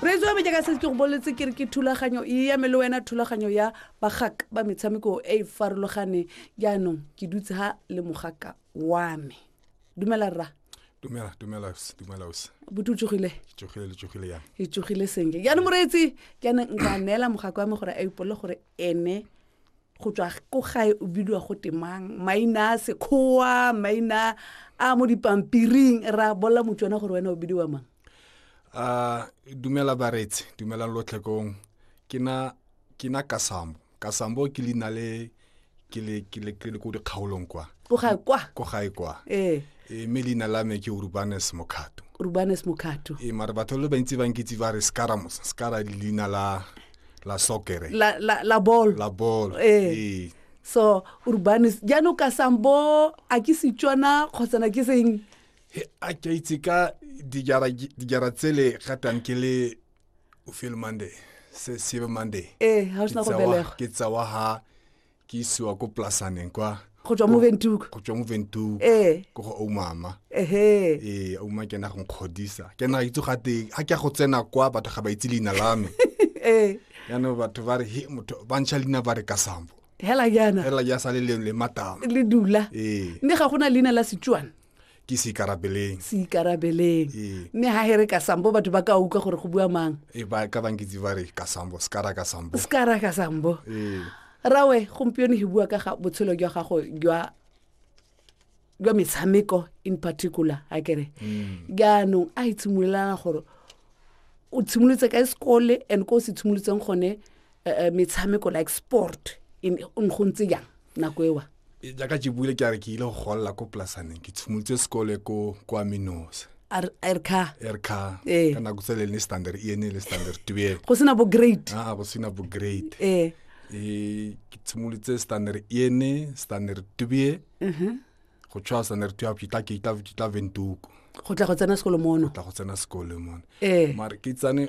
reetso ya me jaaka se ke go boletse ke re ke thulaganyo e ya me le wena thulaganyo ya bagak ba metshameko e e farologane jaanong ke dutse ha le mogaka wa me dumela rra dumela dumela dumela ose botu tsogile tsogile le tsogile yang e tsogile senke jaanong moreetsi ke ane nka neela mogaka wa me gore a ipolele gore ene go tswa ko gae o bidiwa go temang maina a sekgowa maina a mo dipampiring ra bolela motswana gore wena o bidiwa mang uh, dumela baretse dumelang lotlhekong ke na ke na kasambo kasambo ke leina le ke le ke le ke le ko dikgaolong kwa ko gae kwa ko gae kwa ee e mme leina la me ke urbanes mokhato urbanes mokhato ee mare batho le bantsi ba nkitse ba re scaramos scara leina la la soccer la la la ball la ball eh. ee so urbanis jaanong ka sambo a ke setswana kgotsana ke seng a ke itse ka dijara tsele gatang ke le o feel monday se sebe monday ee ga o sena go belegwa ke tsawa ha ke isiwa ko plasaneng kwa go tswa mo ventuka go tswa mo ventuka ee ko go oumama ehe ee ouma ke na go nkgodisa ke na ga itse gate ga ke ya go tsena kwa batho ga ba itse leina la me ee yaanong batho ba re he motho ba ntšha leina ba re ka sambo hela jana fela ya sale le le matama le dula ee mme ga go na leina la setswana ke se ikarabeleng se ikarabeleng Ee. mme ga he re ka sambo batho ba ka utlwa gore go bua mang e ba ka bankitse ba re ka sambo sekara ka sambo se ka ra ka sambo ee rawe gompieno he bua ka ga botshelo jwa gago jwa jwa metshameko in particular a kere jaanong a itshimolelana gore o tshimolotse ka sekole and ko o se tshimolotseng gone eh, eh, metshameko like sport in- o ne go ntse jang nako ewa e, jaaka ke buile ke a re ke ile go golela ko polasaneng ke tshimolotse sekole ko kwa minosa erka erka ee. ka nako tsele ne standard e ne le standard tue go sena bo great ah go sena bo great eh e ke tshimolotse standard e ne standard tue mhm. go tswa standard tue ke tla ke tla ke tla ventuko go tla go tsena sekolo mono tla go tsena sekolo mono eh mara ke tsane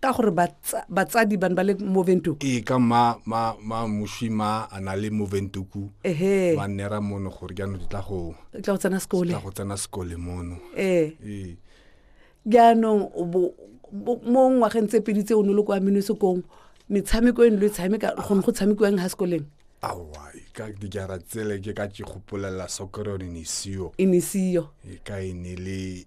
ka gore batsadi bane ba le moventuku ee ka ma ma ma moswi ma a na le moventuku ehe ba nnera mono gore jaanong di tla go e tla go tsena sekole tla go tsena sekole mono ee ee jaanong o bo- bo- mo ngwageng tse pedi tse o ne o le kwa minosekong metshameko e ne lo e tshameka gone go tshamekiwang ha sekoleng awa e ka dijara tsele ke ka ke gopolela soccer yone ne e seyo e ne e seyo e ka e ne le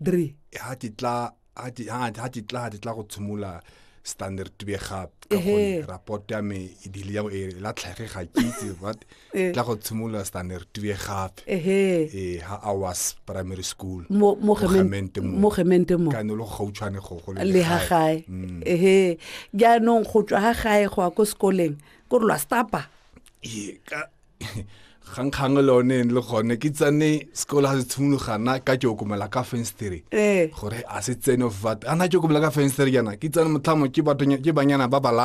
dre ha ke tla ha ke ha ha ke tla ha ke tla go tshimola standard to be gap ka Ehe. gonne rapport ya me e bile ya e la tlhage ga ke itse what Eh. tla go tshimola standard to be gape ehe eh ha I was primary school mo mo Mogemente gemente mo. mo gemente mo ka ne lo gautshwane go go le ha gae Mm. ehe jaanong go tswa ha gae go ya ko sekoleng ko re lwa stapa Ee, ka kgangkgang le one ene le gone ke tsane sekolo ga se tshimologana ka ke okomela ka fenstere ee gore a se tsene of vat ana ke okomela ka fenstere jaana ke tsane motlhamo ke batho- ke banyana ba balala